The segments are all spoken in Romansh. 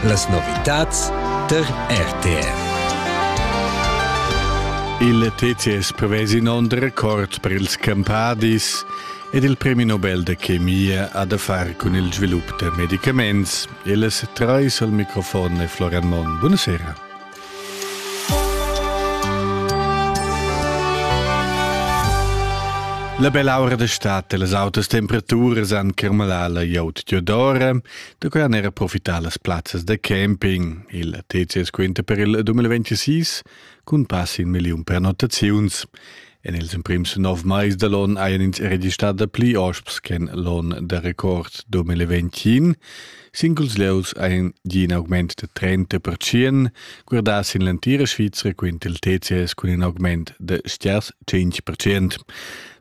Las novitads tar RTR. Il TCS prevesi in onn record per ils campadis ed il premi Nobel de chemia ha da far cun il svilup da medicaments. E las treis al microfon è Florian Monn. Buonasera. La bell'aura d'estate e las autas temperaturas han curmalà la glieud d'Iodora, da quai han era profità las plazzas da camping. Il TCS quinta per il 2026 cun pass in milliun prenotaziuns. En ils emprims nov mais da l'onn hajan ins registrà dapli osps ch'en l'onn da record 2021. Singuls lieus hajan gì in augment da 30 percent, guardà sin l'entira Svizra quint il TCS cun in augment da stiers 5 percent.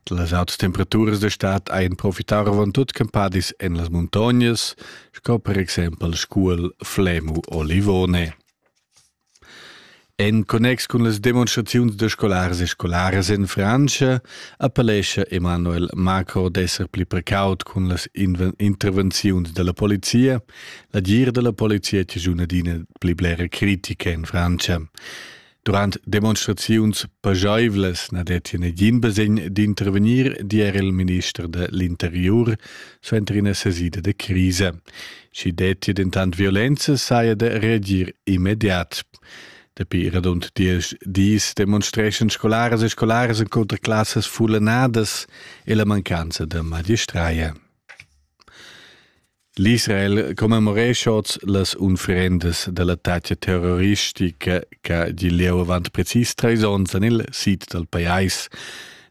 Las autas temperaturas da stad hajan profità avant tut campadis en las muntognas, sco per exempel Scuol, Flemu o Livone. En connex cun las demonstraziuns da scolars e scolaras en Frantscha appellescha Emanuel Marco d'esser pli precaut cun las intervenziuns dalla polizia. La dir dalla polizia è una adina pli blera critica en Frantscha. Durant demonstraziuns pageivlas na detti negin basegn d'intervenir, di era il minister dall'interiur, suenter ina sesida de crisa. Schi detti dentant violenza saja de reagir immediat. Dapi radund diesch dis demonstreschan scolaras e scolaras contra classas fullanadas e la mancanza de magistraia. L'Israel commemorescha oz las unfrendas dell'attacca terroristica che di leu avant precis treis onns en il sid dal pajais.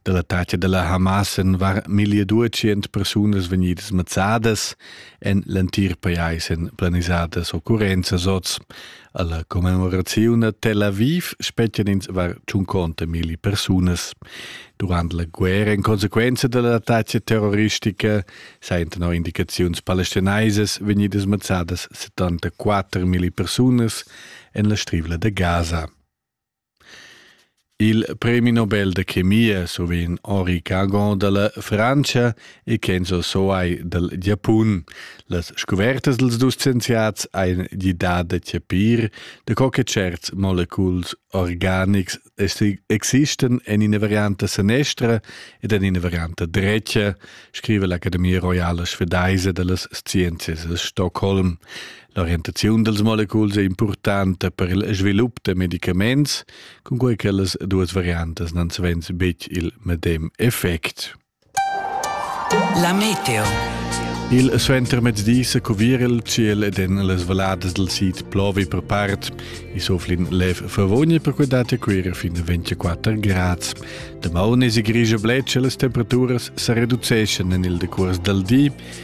Dall'attacca dalla Hamas en var 1200 persunas vegnidas mazzadas en l'entir pajais en planisadas occurrenzas oz. Alla commemorazione Tel Aviv spetgan ins var 50 mili persunas. Durant la guerra in conseguenza dell'attacca terroristica sentono indicazioni palestinaisas vegnidas mazzadas 74 mili persunas en la strivla de Gaza. Il premi Nobel da chemia survegn Henri Cagon dalla Frantscha e Kenzo Soai dal Giapun. Las scuvertas dals dus scienziats ein gidà da chapir da co che certs moleculs organics existan en ina varianta sanestra ed en ina varianta drecia, scriva l'Academia Royala Svedese dallas Sciences a Stockholm. L'orientaziun dals moleculs è impurtanta per il svilup da medicaments, cunquai che las duas variantas n'han savens betg il medem effect. La meteo. Il suentermezdi sa cuvir il ciel ed en las valladas dal sid plovi per part. I soflin lev favogna per quei data cuira fin 24 grads. Damaun e si grigia bletscha las temperaturas sa reduceschan en il decuors dal di